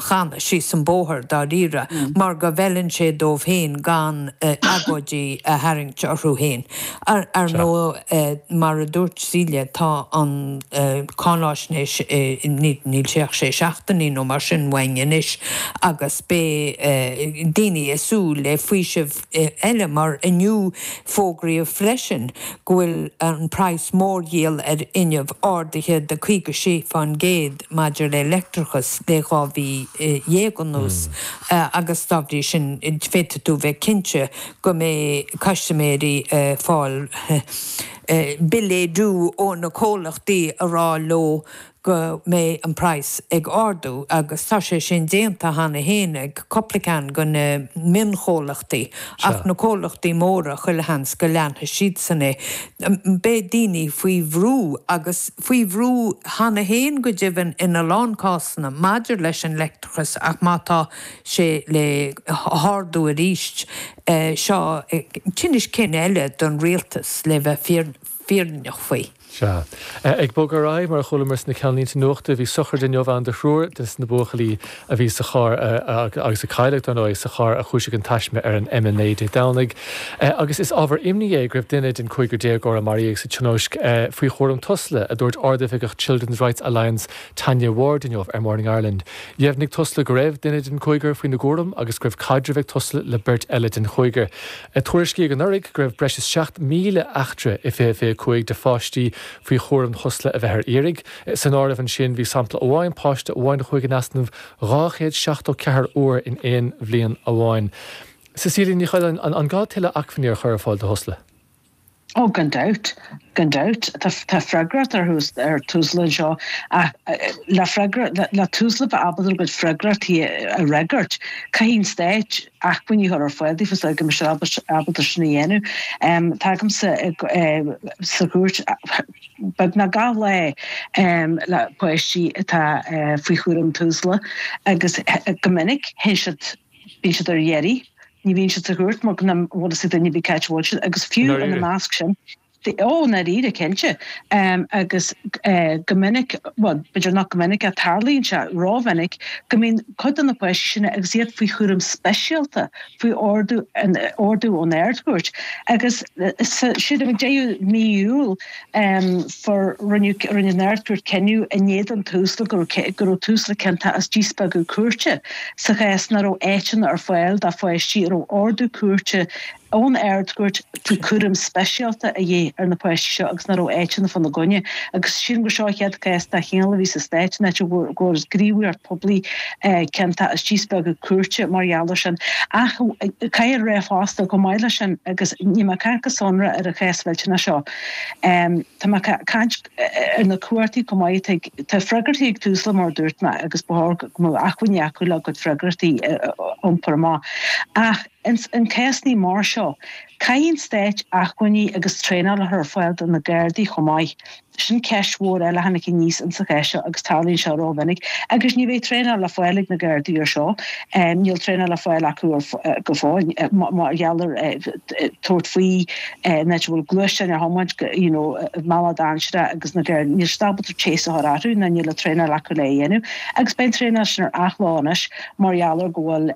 channa síos an bóthar dáiríre mar go bhfeileann sé dóibh féin gan agóidí a tharraingt orthu féin. Ar ndóigh, mar a dúirt Celia, tá an cáinaisnéis, níl sé ach sé seachtainí nó mar sin uainn anois agus beidh daoine ag súil le faoiseamh. eile mar inniu fógraíodh freisin go bhfuil an praghas mórdhíol ar fhuinneamh ardaithe de 56% maidir le leictreachas le dhá mhí dhéag anuas agus dá bhrí sin féadfaidh tú bheith cinnte go mbeidh custaiméirí ag fáil billéad ó na comhlachtaí ag rá leo go mbeidh an praghas ag ardú agus tá sé sin déanta cheana fhéin ag cúpla ceann de na mionchomhlachtaí ach na comhlachtaí móra chuile sheans go leanfaidh siadsan é. Beidh daoine faoi bhrú agus faoi bhrú cheana fhéin go deimhin in a lán cásanna maidir leis an leictreachas ach má tá sé le hardú aríst seo tinneas cinn eile don rialtas le bheith fírinneach faoi. Sea. Ag bogadh ar aghaidh, mar a chualamar sna ceannlínte nuachta, bhí sochraid inniu ann do thriúr de na buachaillí a bhí sa charr, agus a cailleadh, dar ndóigh, sa charr a chúisigh an taisme ar an M9 Dé Domhnaigh, agus is ábhar imní é go raibh duine den chúigear déagóir a maraíodh sa tionóisc faoi chúram Tusla, a dúirt Ardoifigeach Children's Rights Alliance Tanya Ward inniu ar Morning Ireland. Dheimhnigh Tusla go raibh duine den chúigear faoina gcúram agus go raibh caidreamh ag Tusla le beirt eile den chúigear. Tuairiscíodh anuraidh go raibh breis is 7,000 eachtra i 2025 de pháistí faoi chúram Tusla a bheith ar iarraidh. San áireamh ansin bhí sampla amháin, páiste amháin a chuaigh in easnamh dhá chéad seachtó ceathair uair in aon bhliain amháin. Cecilia Ní Choileáin, An gá tuilleadh acmhainní a chur ar fáil do Thusla? Oh gan dabht, gan dabht. Tá, tá freagracht ar Tus, ar Tusla anseo ach le freagra, le, le Tusla bheith ábalta a gcuid freagrachtaí a fhreagairt caithfidh an Stát acmhainní a chur ar fáil daofa so go mbeidh siad ábalta, ábalta sin a dhéanamh. Táimse sa chúirt beagnach gach lá le páistí atá faoi chúram Tusla agus go minic théann siad, bíonn siad ar iarraidh, ní bhíonn siad sa chúirt mar nach bhfuil a fhios ag duine ar bith cá háit a bhfuil siad agus fiú ina measc sin, ó, i ndáiríre, cinnte, agus go minic, bhuel, b'fhéidir nach go minic ach tarlaíonn sé rómhinic go mbíonn cuid de na páistí sin agus iad faoi chúram speisialta, faoi ordú ón Ardchúirt agus siad ag deireadh mí Iúil. um for rinneadh rinne an Ardchúirt cinneadh in éadan Tusla go raibh go raibh Tusla ciontach as díspeagadh cúirte sa chás nach raibh áiteanna ar fáil do pháistí a raibh ordú cúirte ón Ardchúirt faoi chúram speisialta a dhith ar na páistí seo agus nach raibh áiteanna fá na gcoinne agus sílim gur seo an chéad chás dá chineál a bhí sa Stát in áit a bhfuair go bhfuair gníomhaireacht phoiblí ciontach as díspeagadh cúirte mar gheall ar sin ach caithfear rá fosta chomh maith leis sin agus níl mé ag caint go sonrach ar an chás mhillteanach seo Tá mé ag caint ar na cumhachtaí chomh maith. Tá freagrachtaí ag Tusla mar dúirt mé agus ba chóir go mbeadh acmhainní acu le a gcuid freagrachtaí a iompar amach. Ach ins na cásannaí mar seo caithfidh an Stát acmhainní agus traenáil a chur ar fáil do na Gardaí chomh maith. Sin ceist mhór eile a tháinig aníos ins an chás seo agus tarlaíonn sé rómhinic. Agus ní bheidh traenáil le fáil ag na Gardaí ar seo. Níl traenáil le fáil acu go fóill mar gheall ar tabhairt faoi in áit a bhfuil gluaisteáin á dtiomáint go, you know, millteanach dainséarach agus na gcarr, níl siad ábalta chase a chur orthu ná níl an traenáil acu le a dhéanamh agus beidh an traenáil sin ar athló anois mar gheall ar go bhfuil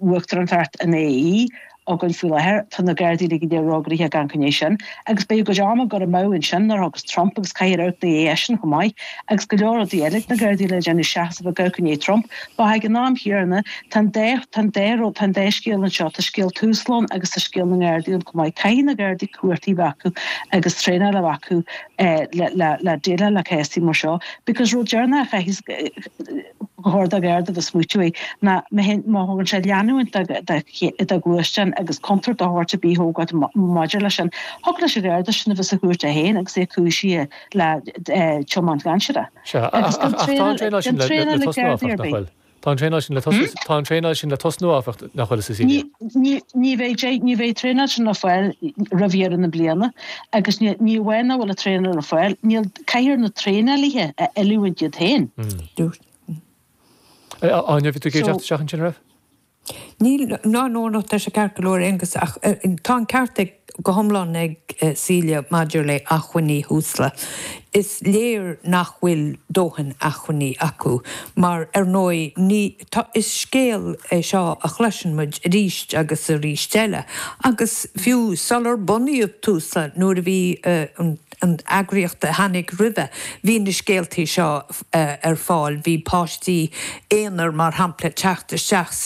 uachtaránacht an AE againn faoi láthair. Tá na Gardaí uilig ar ragobair fána choinne sin agus beidh a gcuid ama curtha amú ansin nuair a thiocfas Trump agus caithfear amharc i ndiaidh eisean chomh maith agus go leor rudaí eile ag na Gardaí le déanamh seasamh i gcoinne Trump But ag an am chéanna, tá an dá tá an dá rud tá an dá scéal anseo, tá scéal Tusla ann agus tá scéal na nGardaí ann chomh maith. Caithfidh na Gardaí cumhachtaí a bheith acu agus traenáil a bheith acu le déileáil le cásannaí mar seo because rud deireanach a chaithfidh gur chóir do Gharda a bheith ag smaoitiú ná má thugann sé leanúint do ghluaisteán agus contúirt dá dtarlódh rud ar bith maidir leis sin. Thiocfadh leis an Gharda sin a bheith sa chúirt é féin agus é cúisithe le tiomáint dhainséarach. Sea, Agus gan ach tá an traenáil sin le tosnú áfach, nach bhfuil? Tá an traenáil sin le tosnú, tá an traenáil sin le tosnú áfach, nach bhfuil, Cecilia? Ní bheidh sé, ní bheidh traenáil sin le fáil roimh dheireadh na bliana agus ní amháin nach bhfuil an traenáil le fáil, níl, caithfear na traenálaithe a oiliúint iad féin. Dúirt. Áine, bhí tú ag iarraidh teacht isteach ansin, raibh? Níl ní hea, aontaím leis ceart go leor, Aengus, ach tá an ceart ag, go hiomlán ag, Celia maidir le hacmhainní Tusla. Is léir nach bhfuil dóthain acmhainní acu, mar ar ndóigh ní, tá, is scéal é seo a chloiseann muid arís agus arís eile, agus fiú sular bunaíodh Tusla, nuair a bhí an, an eagraíocht a tháinig roimhe, bhí na scéaltaí seo ar fáil, bhí páistí aonair, mar shampla, ag teacht isteach sa,